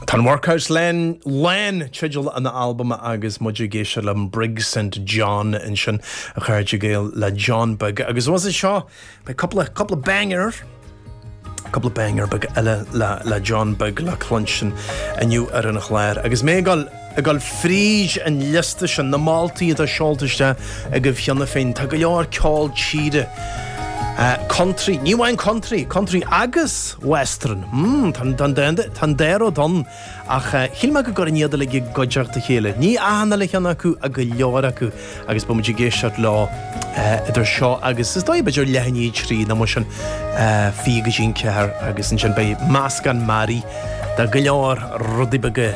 Tá an Workhouse Lán, teideal an albaim agus muid ag éisteacht le Brig St John ansin, a chairde Gael le John Beag. Agus anuas air seo, beidh cúpla, cúpla banger, cúpla banger beaga eile le, le John Beag le cluinstin inniu ar an chlár. Agus mé. ag gabháil fríd an liosta sin na moltaí atá seolta isteach agaibh cheana féin, tá go leor ceol tíre, country, ní amháin country, country agus western, tá an dá rud ann ach shíl mé go gcuirfinn iad uilig i gcuideachta a chéile, ní achan uile cheann acu ach go leor acu. agus beimid ag éisteacht leo idir seo agus, is dóigh, b'fhéidir leath i ndiaidh a trí nó mar sin, fiche go dtí an ceathair agus ansin beidh meascán mearaí de go leor rudaí beaga,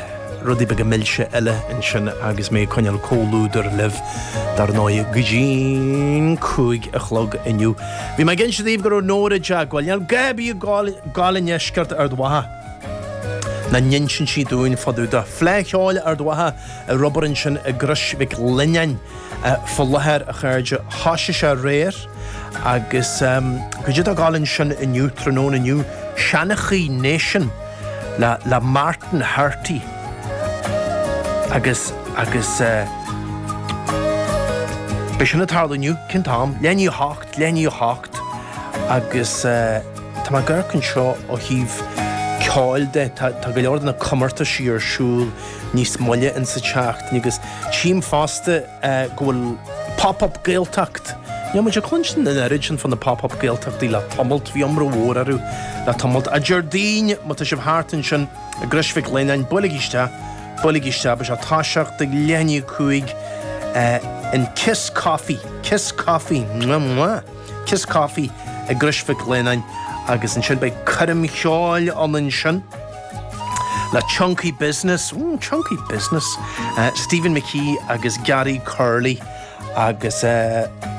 rudaí beaga milse eile ansin agus mé ag coinneáil comhluadair libh, dar ndóigh, go dtí an cúig a chlog inniu. Bhí mé ag inse daoibh go raibh Nóra dea-ghoil. Níl gá, bhí a ghoil, ghoil i ndeisceart Ard Mhacha. Ná n-inseann sí dúinn fá dtaobh de. Fleá Cheoil Ard Mhacha. ar obair ansin i gCrois Mhic Lionnáin faoi láthair, a chairde. Thosaigh sé aréir agus cad é atá ag gabháil ansin inniu, tráthnóna inniu, seanchaí Nation le Martin Hurty agus agus beidh sin ag tarlú inniu, cén t-am? Leath i ndiaidh a hocht, leath i ndiaidh a hocht agus tá mé ag amharc anseo ó thaobh ceoil de, tá go leor de na comórtaisí ar siúl. Níos moille in sa tseachtain agus tchím fosta go bhfuil Pop Up Gaeltacht. Níl muid ag cluinstin an oiread sin fá na Pop Up Gaeltachtaí le tamalt, bhí iomrá mhór orthu le tamalt. A Déardaoin, má tá sibh thart ansin i gCrois Mhic Lionnáin, buailigí isteach, buailigí isteach, beidh sé ag toiseacht ag leath i ndiaidh a cúig in Kiss Coffee, Kiss Coffee, mwah mwah, Kiss Coffee i gCrois Mhic Lionnáin agus ansin beidh coirm cheoil ann ansin. Le Chunky Business, mm chunky business, Stephen McKee agus Gary Curley agus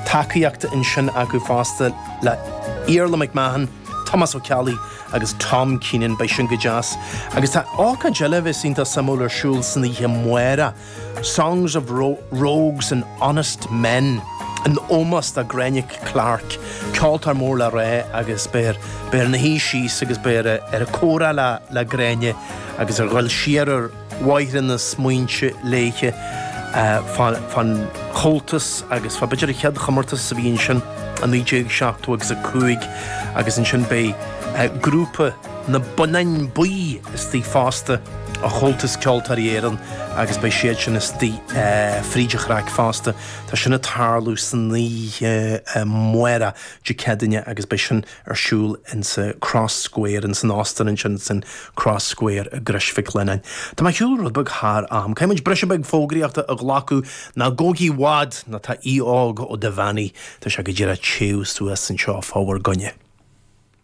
tacaíocht ansin acu fosta le Iarla McMahon, Tomás Ó Ceallaigh agus Tom Keenan, beidh sin go deas. Agus tá ócáid eile a bheas iontach suimiúil ar siúl san oíche amárach. Songs of Rogues and Honest Men in ómós do Gráinne Clarke, ceoltóir mór le rá agus beifear ina suí síos agus beifear ag comhrá le Gráinne agus ag dul siar ar bhóithre na smaointe léithe fán Chomhaltas agus fá b'fhéidir an chéad chomórtas a bhí ansin i 1970 agus 5 agus ansin beidh grúpa Na Bonnáin Bhuí istigh fosta ó Chomhaltas Ceoltóirí Éireann agus beidh siad sin istigh fríd an chraic fosta. Tá sin ag tarlú san oíche amárach Dé Céadaoine agus beidh sin ar siúl in sa Cross Square, in san Óstán ansin san Cross Square i gCrois Mhic Lionnáin. Tá mé ar shiúl rud beag thar am. Caithfidh muid briseadh beag fógraíochta a ghlacadh. Ná gabhaigí i bhfad nó tá Aodh Óg Ó Duibheannaigh, tá sé go díreach ag téamh suas anseo fá bhur gcoinne.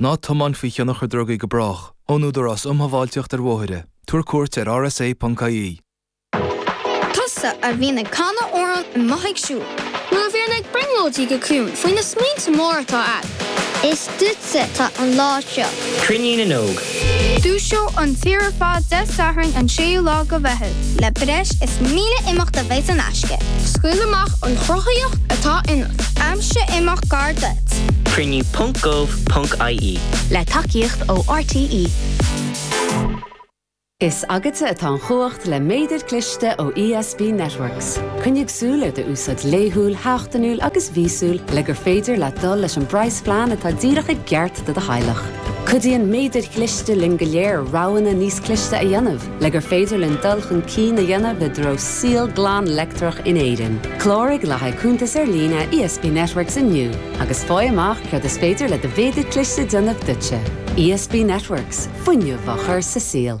Ná tiomáin faoi thionchar drugaí go brách, ón Údarás Um Shábháilteacht ar Bhóithre, tabhair cuairt ar rsa.ie. Tusa a bhíonn ag canadh amhrán amuigh ag siúl. Nó a bhíonn ag brionglóidí go ciúin faoi na smaointe móra atá agat. Is duitse atá an lá seo. Cruinniú na nÓg. Dúiseoidh an tír ar fad Dé Sathairn an 6ú lá de Mheitheamh. Le breis is 1,000 imeacht a bheas in aisce. Scaoil amach an chruthaíocht atá ionat. Aimsigh imeacht gar duit. Cruinniú ponc gov ponc ie. Le tacaíocht ó RTÉ. Is agatsa atá an chumhacht le Méadar Cliste ó ESB Networks. Coinnigh súil ar do úsáid laethúil, sheachtainiúil agus mhíosúil le gur féidir leat dul leis an bpraghasphlean atá díreach i gceart do do theaghlach. Cuidíonn Méadair Chliste linn go léir roghanna níos cliste a dhéanamh. Le gur féidir linn dul chun cinn a dhéanamh i dtreo saol glan leictreach in Éirinn, cláraigh le haghaidh cuntas ar líne ESB Networks inniu agus faigh amach céard is féidir le do mhéadar cliste déanamh duitse. ESB Networks, fuinneamh á chur sa saol.